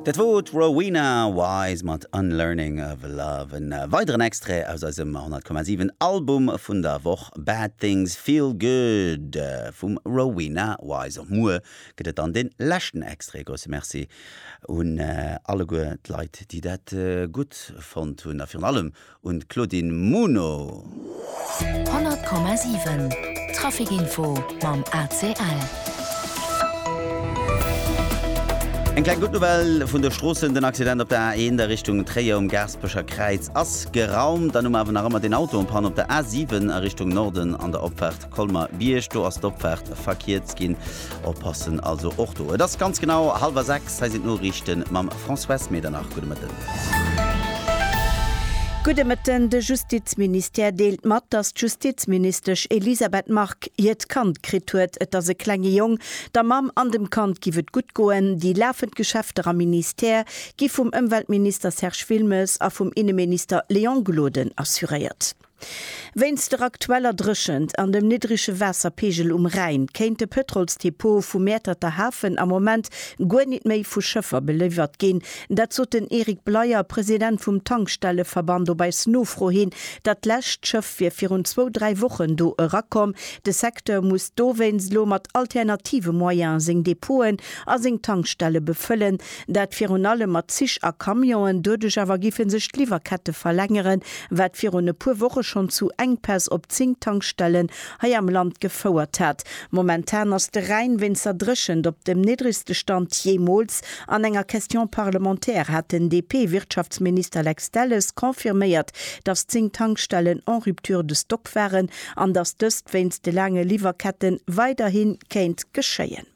Dat wor d' Rowena Wise mat Unlearning of Love. En weideren Extrait aus eisem 100,7 Album vun der Woch, Bad Things Feel Good vum Rowena Wise. Och muer gëtt et dann den leschten Extrait. Grousse Merci un alleguer d'Leit déi dat gutt fonnt hunn a virun allem un d'Claudine Muno. 100,7 Traficinfo mam ACL. Eng kleng gutt Nouvelle vun de Stroossen, Den Accident op der A1 a Richtung Tréier um Gaaspecher Kräiz ass geraumt. Dann hu mer awer nach ëmmer deen Auto en panne op der A7 a Richtung Norden an der Opfaart Colmer Bierg, do ass d'Opfaart verkierzt ginn. Oppassen also och do. Et ass ganz genau hallwer 6, hei sinn d'Noriichte mam Françoise Medernach. Gudde Mëtten. Gudde Mëtten. De Justizministère deelt mat, datt d'Justizministesch Elisabeth Margue hiert Kand kritt huet. Et ass e klenge Jong. Der Mamm an dem Kand giff et gutt goen. Déi lafend Geschäfter am Ministère gi vum Ëmweltminister Serge Wilmes a vum Inneminister Léon Gloden assuréiert. Wéinst der aktueller Dréchent an dem niddrege Waasserpeegel um Rhäin kéint de Pëtrolsdepot vu Mäerterter Hafen am Moment guer nit méi vu Schëffer beliwwert ginn. Dat sot den Eric Bleyer, President vum Tankstelleverband op eis Nofro hin. Dat lescht Schëff wier virun zwou, dräi Wochen do erakomm. De Secteur muss dowéinst elo mat alternative Moyene seng Depoten a seng Tankstelle befëllen. Dat virun allem mat Zich a Camionen. Doduerch awer géife sech d'Liwwerkette verlängeren, wat virun e puer Woche schonn zu Enkpäss op 10 Tankstellen hei am Land gefouert hat. Momentan ass de Rhäin wéinst der Dréchent op dem niddregste Stand jeemools. An enger Question parlementaire hat den DP-Wirtschaftsminister Lex Delles confirméiert, datt 10 Tankstellen en rupture de stock waren an datt dëst wéinst de laange Liwwerkette weiderhi kéint geschéien.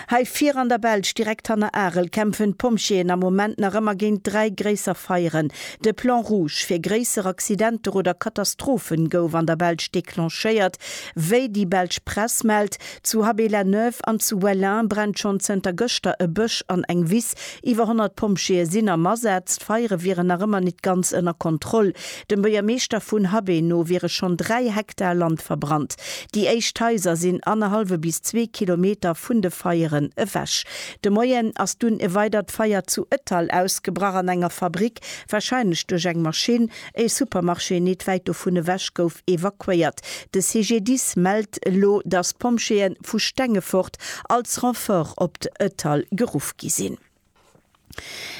Hei vir an der Belsch, direkt hanner Arel, kämpfen d'Pompjeeën am Moment nach ëmmer géint dräi gréisser Feieren. De Plan rouge fir gréisser Accidenter oder Katastrophen gouf an der Belsch declenchéiert. Wéi déi belsch Press mellt, zu Haby-la-Neuve an zu Wellin brennt schonn zënter gëschter e Bësch an eng Wiss. Iwwer 100 Pompjeeë sinn am Asaz. D'Feiere wieren nach ëmmer nit ganz ënner Kontroll. Dem Buergermeeschter vun Habeen no wiere schonn 3 Hektar Land verbrannt. Déi éischt Haiser sinn annerhallwe bis zwee Kilometer vun de Feieren ewech. De Moien ass dunn e weidert Feier zu Ettal ausgebrach an enger Fabrick, warscheinlech duerch eng Maschinn. E Supermarché nit wäit dovun ewech gouf evakuéiert. De CGDIS mellt elo, datt Pompjeeë vu Stengefort als Renfort op Ettal geruff gi sinn.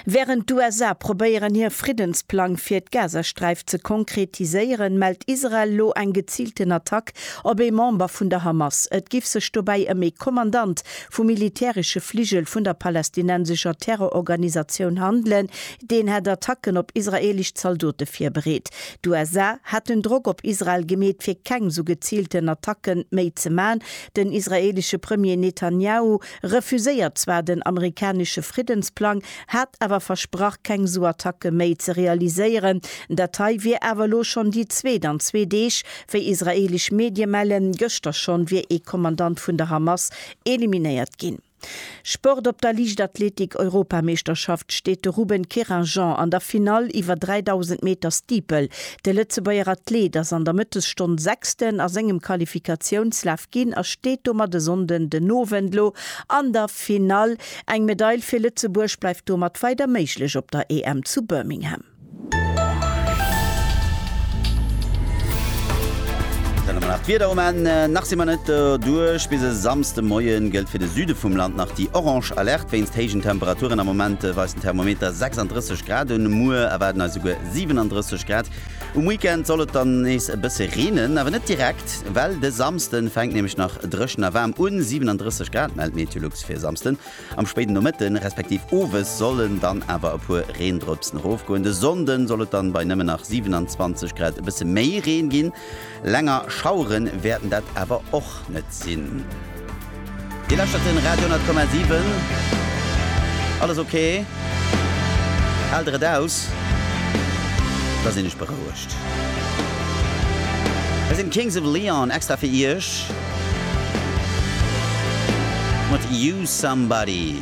Wärend d'USA probéieren hir Friddensplang fir d'Gazasträif ze konkretiséieren, mellt Israel elo eng geziilten Attack op ee Member vun der Hamas. Et giff sech dobäi ëm ee Kommandant vum militäresche Fligel vun der palästinensescher Terrororganisatioun handelen, deen hätt Attacken op israeelesch Zaldote virbereet. D'USA hätten Drock op Israel gemeet fir keng sou geziilten Attacke méi ze man. Den israeelesche Premier Netanjahu refuséiert zwar den amerikanesche Friddensplang, hat awer versprach keng sou Attacke méi ze realiséieren. Dat hei wier awer elo schonn déi zweet an zwee Deeg. Wéi israeelesch Medie mellen, gëschter schonn wier ee Kommandant vun der Hamas eliminéiert ginn. Sport, Op der Liichtathletik-Europameeschterschaft steet de Ruben Querinjean an der Finall iwwer 3000 Meter Steeple. De Lëtzebuerger Athlet ass an der Mëttesstonn Sechsten a sengem Qualifikatiounslaf ginn a steet domat e Sonnden den Owend elo an der Finall. Eng Medail fir Lëtzebuerg bleift domat weider méiglech op der EM zu Birmingham. Dann hu mer nach d'Wieder um Enn. Nach si mer net doduerch. Bis e Samsde Moie gëllt fir de Süde vum Land nach déi orange Alerte wéinst héijen Temperaturen. Am Moment weist den Thermometer 36 Grad un. Muer erwaarden eis esouguer 37 Grad. Um Weekend soll et dann nees e bësse reenen, awer net direkt, well de Samsden fänkt nämlech nach dréchen a waarm un, 37 Grad mellt Meteolux fir e Samsden. Am spéiden Nomëtte respektiv Owes sollen dann awer e puer Reendrëpsen erofgoen. De Sonnden soll et dann bei nëmmen nach 27 Grad e bësse méi Reen ginn. Länger Schaueren wäerten dat awer och net sinn. Dir lauschtert den Radio 10,7. Alles ok? Haalt der et aus? Da sinn ech berouegt. Hei sinn d'Kings of Leon extra fir iech mat You Somebody.